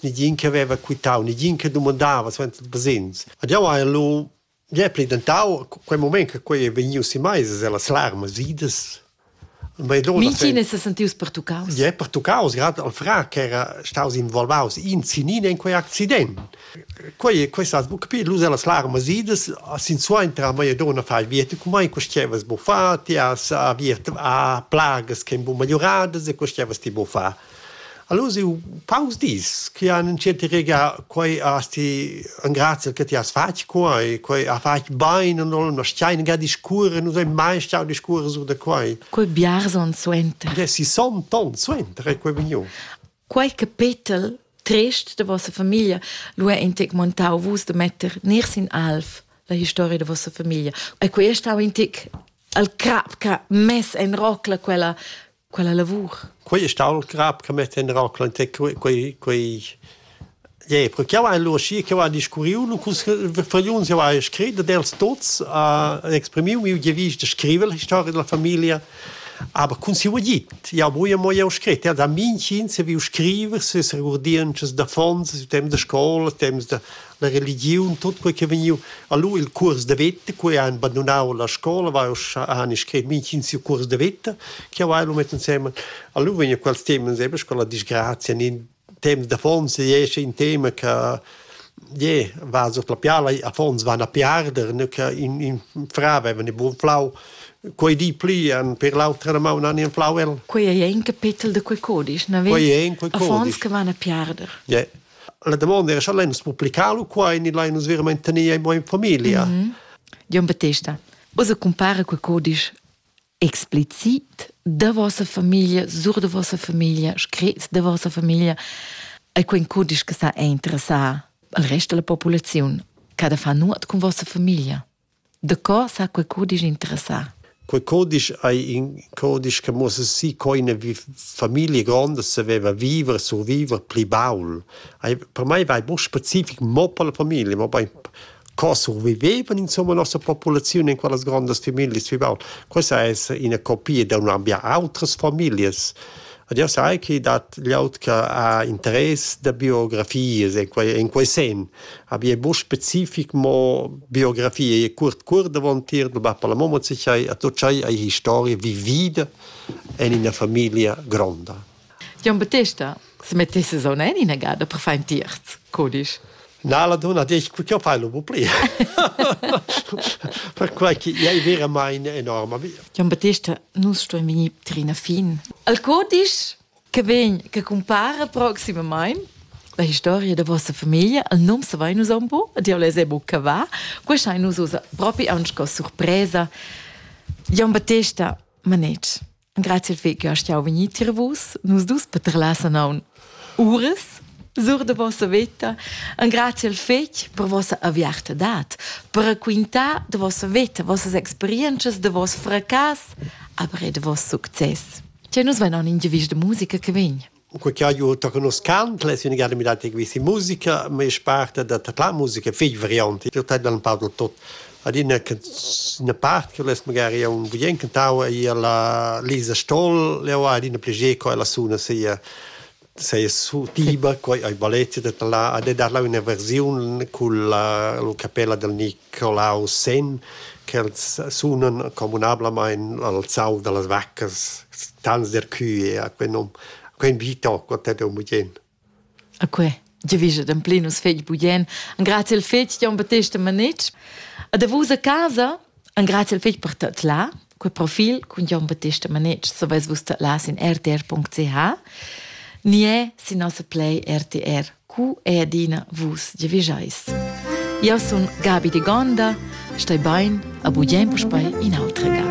negin che veva quitau, negin che domandava suenter basegns. Ed jau hai lu ja pli dentau quei moment che quei è vegniu si meis las larmas idas. Minchin è se sentius pertuccaus? Ja, pertuccaus, grad al fra che era staus involvaus in sinin in quei accident. Quei quei sa capir lu las larmas idas sin suentra mei donna fai viete cum mai questevas bu fa ti as aviert a plagas che bu melioradas e questevas ti bu fa. Allura siu paus dis chi han entschiet regar quei has ti engraziel che ti has fatg quei, quei ha fatg bein en olma, stein ga discurrer, nus ein mai stau discurrer sur da quei. Quei biars onns suenter. Gie, sessanta onns suenter è quei vegniu. Quei capetel trist de vossa famiglia lu è intec montau vus de metter ners in alf la historia de vossa famiglia. E quei è stau intec al crap che mess en rocla quella quella lavur. Quei è stato il grab che mi tenderà quei quei Yeah, perché io ein logi che va discuriu nu cus vergliuns io hai scrit dels tots a exprimiu mi je vis de scriver la storia della famiglia aber kun si vogit ja boje mo je scrit ja da min kin se vi scriver se se regurdieren das da fons dem de scola dem de la religiun, tot quei che vegniu. Allora il cuors de veta, quei ha abbandonau la scola, va ussa han scrit mintgin siu cuors de veta, che va lo met insieme. Allora vegna quels temas sempre con la disgrazia, in temas da fons esce in tema che je va so la piala a fons van a piarder ne che in in fra aveva ne buon flau quei di pli an per l'altra ma un anni flau el quei è in capitel de quei codice na quei è in quei codice che van a piarder yeah. La damonda era, scha l'hai nus publicalo qua e ni l'hai nus verament tenea in mo in familia. Mm -hmm. Jon Battesta, vos compare quel codisch explicit da vossa famiglia, sur de vossa famiglia, scritts de vossa famiglia, è quel codisch che sa interessar al resto della popolazione, che da fa nuot con vossa famiglia. Daco s'ha quei cudisch interessà? Quei cudisch ei in cudisch che muossa si co ina famiglia gronda saveva viver, surviver pli baul. Ei, per mei vai mo specific mo per la famiglia, mo bein co survivevan insomma la nossa populaziun in quellas grondas familias pli baul. Questa è ina copia da un ambient, autras familias Ed jau sai che dat glieud che ha interess da biografias en quei, en quei senn. Aber è buc specific, mo biografie è curt cur davontier, du va per la mamma sicher, a tu c'hai hai historie vivida en ina famiglia gronda. Jon Battesta, se mettisses on en ina gada per far in tierz, codisch. Na la donna dice che io fai lo pli perquai che è veramente enorme Gian Battista nus stuem venir trina fin al codice che vegn che compara proximamente la historia da vostra famiglia al nome se vai nus un po ed io les è buca va questo hai nus usa proprio anche sorpresa Gian Battista manec Grazie dve che hast jau vegnì tier vus. Nus dus petrelassen aun uras sur de vossa veta, en grazie al fetg per vossa aviartadad, per raquintar de vossa veta, vossas experiences, de voss fracas, aber e de voss succes. Che nus venon in gevis de musica che vegn. u co cha eu to conoschant l'es üna gada mirà da quista musica, ma es parta da tadlar musica fich variante. Eu tadla ün pa da tot. Ad üna üna part che l'es magari un bien cantau ei la Lisa Stoll, eu ha adina piager co ella suna sia seia tiba, quai ei balletta da talà, ad e darla üna versiun cun la capella del Nic colau sen che sunan communablamain al zau da las vaccas tans der cue a quel nom a quel vita co te de mugen a que giavischa dan plenus fegl bugen an grazie il fegl Jon Battesta Manetsch a da vos a casa an grazie il fegl per tot la Quei profil cun Jon Battista Manetsch saveis vus tadlar sin rtr.ch ni è sin nossa play RTR cu è adina vus giavischais. Io sun Gabi de Gonda, stai bain, a bugen puspei in altra ga.